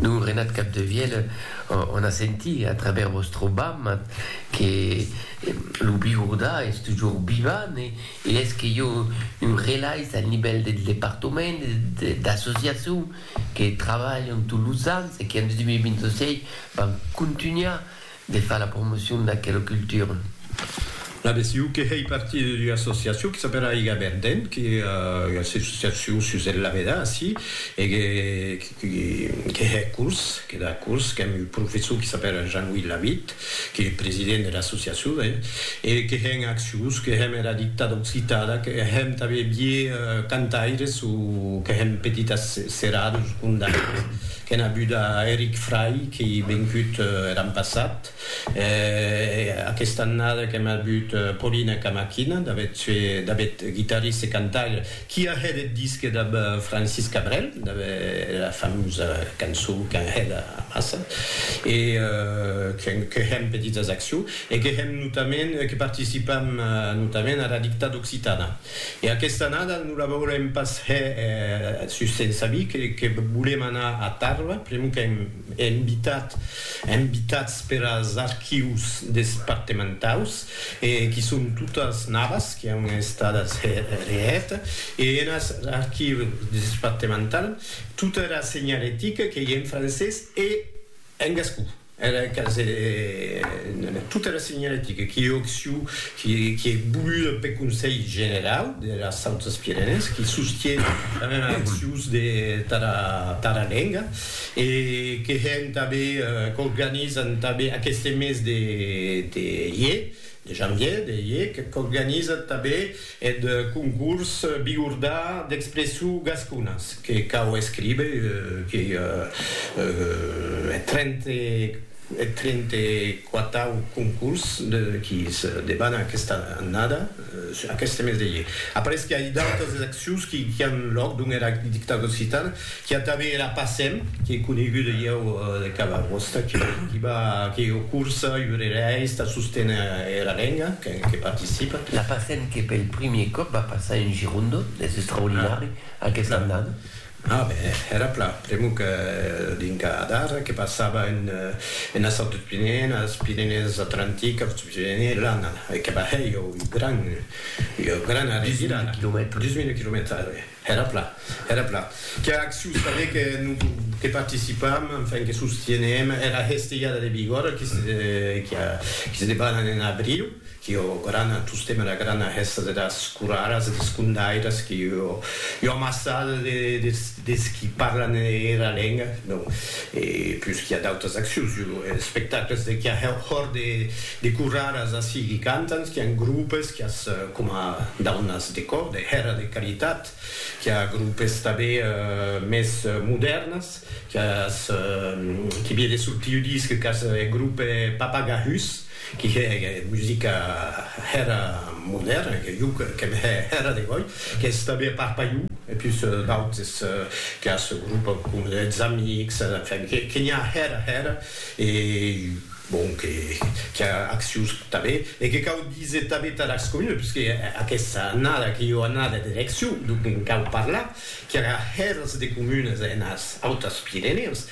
Lo Renat Capdevièlh o n'a sentit a travèrs vòstre bam que lo Bigordà es tujor vivant e es que jo un relais al nivèl del departament e d'associacion que trabalhan tots los ans e que en 2026 van contunhar De far la promocion d'aquela cultura. La BCU que hèi partir d'ua associacion que s'apèla Aiga Verdent, que ua associacion sus el lavedar ací, e que que hè curs, que da curs, qu'èm un professor que s'apèla Jean-Louis Lavitte, qu'ei president de l'associacion, ben, e que hè un acciós, que hèm era dictada occitada, que hèm tanben vier cantaires o que hèm petitas seradas o condaires. Qu'en abuda Eric Fray qu'ei vencut er an passat, e aquesta annada qu'en abut Paulina Camaquina, d'avet sue d'avet guitarriste e cantaire qui a hèt eth disque dab Francis Cabrel, dab era famosa cançon qu'an hèt amassa, e que hèm petitas accions, e que hèm notament, que participam notament ara Dictada Occitana. E aquesta annada non la veurem pas hè sus se'n sabi que volem anar a Tarba, pr'amor qu'èm invitat, invitats per as archius despartementaus e qui son totas navas qui an estadas hè reèta e en as archius despartemental tota era senhalética qu'ei en francés e en gascon. Era casa en tota era senhalética qui occiu qui ei voluda peth Conselh Generau deras Autas Pirenèes qui sostie tanben accions de tara lenga e que hèn tanben qu'organizan tanben aqueste mes de ier de janvier de ier qu'organizan tanben Eth concurs bigordà d'expressu gasconas que cau escríber que eth trente quatau concurs qui se debana aquesta annada, aqueste mes de ier. Après que ai d'autas accions qui an lòc dont era dictada occitana Qu'i a tanben era Passem, qu'ei coneguda ieu de cada costat, qu'i va, que ei ua corsa iurerèis tà sosténer era lenga, que participa. La Passem que pel primier còp va passar en Girondo, es extraordinari aquesta annada. A ben, era plan, pr'amor que dinca d'ara que passava enes autres Pirenèes, Pirenèes Atlantiques, Autres Pirenèes, l'annada que va hèr ieu ua gran, ua grana revirada, 10.000 quilomètres, 10.000 quilomètres, ara ben. Era plan, era plan. Qu'a acciu saber que non que participam, enfin que sostienem era hestelhada de Bigòrra qui se qui a qui se debanan en abriu, qui ò grana tostem era grana hèsta de das coraras e des condairas qui ò io amassada de des des qui parlan era lenga, non e plus qui a d'autas accius, io espectacles de qui a hòr de De corraras ací qui cantan, qu'i an grupes, qu'i as coma daunas de còr, de hèra de caritat, qu'i a grupes tanbé mès modèrnas, qu'i as qui vie de sortir ua disc qu'as eth grupe Papagahus, qui hè musica hèra modèrna, que jo qu'èm hè hèra de gòi, qu'ès tanbé a Parpaiu, e pus d'autes, qu'i as grupes coma Eths Amics, enfin, que n'i a hèra hèra, e Bon, que qu'i a accions tanben e que cau díser tanben tà las comunes, puisque aquesta annada qu'ei ua annada d'eleccion, donc en cau parlar qu'i aurà hèrs de comunes enas Autas Pirenèus,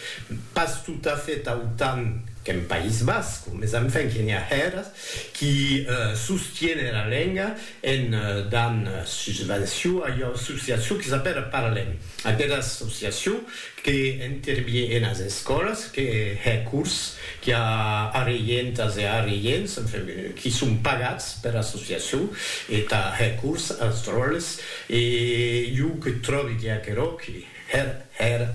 pas totafèt autant qu'en País Basc, mes enfin que n'i a hèrs qui sostienen la lenga en dant susvenció a ua associacion qui s'apèla Parlem, aquera associacion que intervie enas escòlas, que hè cors, qui a arreientas e arreients, enfin, qui son pagats per associacion e tà hè cors als dròlles, e jo que tròbi que aquerò que hèr hèr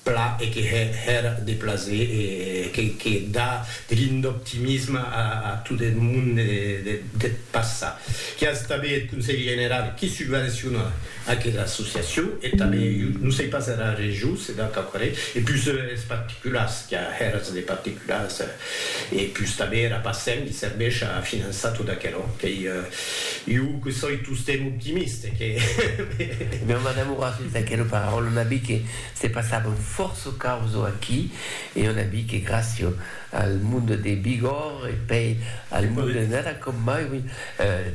pla e que hè hèr de plaser e que que dà de l'ind'optimisme a a tot eth monde deth passat, qui as tanben eth Conselh General qui subvenciona Aquela associacion e tanben, jo non sei pas era region se deu qu'aquarè, e pus es particulars, qu'a hèras de particulars, e pus tanben era Pacem li serveish a finançar tot aquerò, qu'ei, jo que soi tostemp optimiste, que. Non m'enamorasse d'aquera paraula, n'a bi que se passavan fòrça causo aquí, e jo n'a bi que gràcia al monde de Bigòrre e pei al monde nada com mai, oui,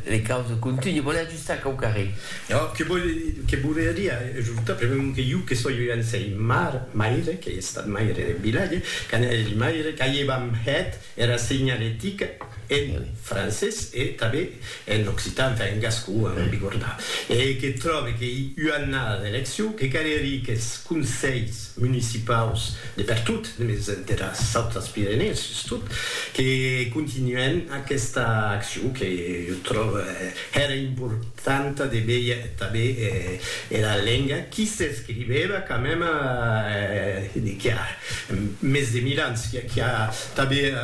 les causes continuent. Sac au carré. Ò, que vòl que voler dire ajorta, premèu que jo que soi un sei mar, maire, qu'ei estat maire de vilatge, qu'an eri maire, qu'aievam hèt era segnaletica en francés e tanben en occitan, enfin en gascon, a non bigordar, e que tròbe qu'ei ua annada d'eleccion, que cal eri qu'es conselhs, municipaus de pertot, mes de las autras Pirenèes sustot, que continuèn aquesta accion que jo tròve hèra importanta de veir tanben era lenga qui s'escrivèva quand même qui a mes de mil ans, qui a tanben,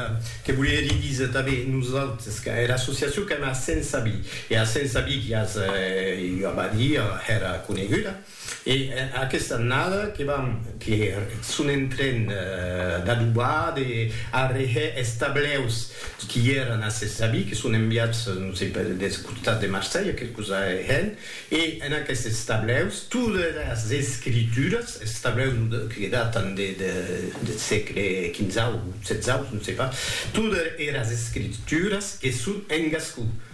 que volerie díser tanben nosautres, quand era associacion quand même a Sensabí, e a Sensabí qui as, jo ava a díer, hèra coneguda. E aquesta annada que vam que son en tren d'adobar, de arreher es tableus qui èran a ses avis, que son enviats, non sei pas, deth costat de Marselha, que cosa hèn, e en aquestes tableus todas es escrituras, es tableus que datan deth sègle quinzau, setzau, non sei pas, todas eras escrituras que son en gascon,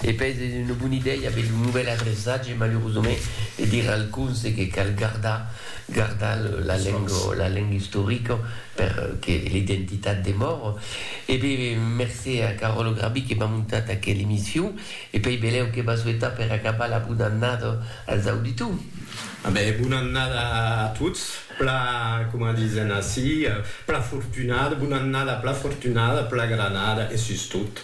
E pes es una bona idèia aver lo novèl adreçatge, malurosament, e dire al conse que cal gardar, gardar la lenga, la lenga istorica per que l'identitat demore. E be, mercé a Caròlo Grabí que m'a montat aquela emission e pei belèu que m'a souetat per acabar la bona annada als auditors. A be, bona annada a tots, pla, coma disen ací, pla fortunada, bona annada pla fortunada, pla granada e sustot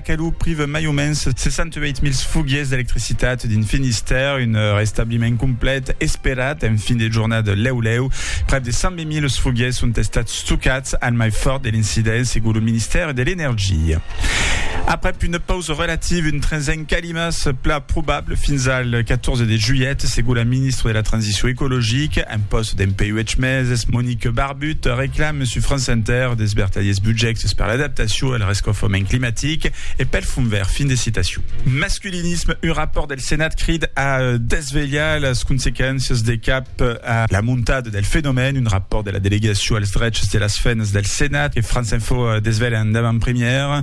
que lo prive mai o mens 68.000 foguiers d'electricitat dins Finistère, un restabliment complet esperat en fin de jornada. Lèu lèu, prèp de 120.000 foguiers son estats stocats al mai fòrt de l'incident, segon lo Ministère de l'Energia. Aprèp una pausa relativa, un trinzèn calima se pla probable fins al 14 de julhet, segon la ministra de la Transicion ecologica en pòst dempuèi uèch meses, Monique Barbé. But, reclame sus France Inter des vertadiers budjèctes per l'adaptacion al rescaufament climatic e pel Fond Verd. Fin de citacion. Masculinisme, un rapòrt del Senat crid a desvelhar las consequéncias de cap a la montada del fenomèn. Un rapòrt de la Delegacion als drechs de las femnas del Senat que France Info desvelha en davant-premièra.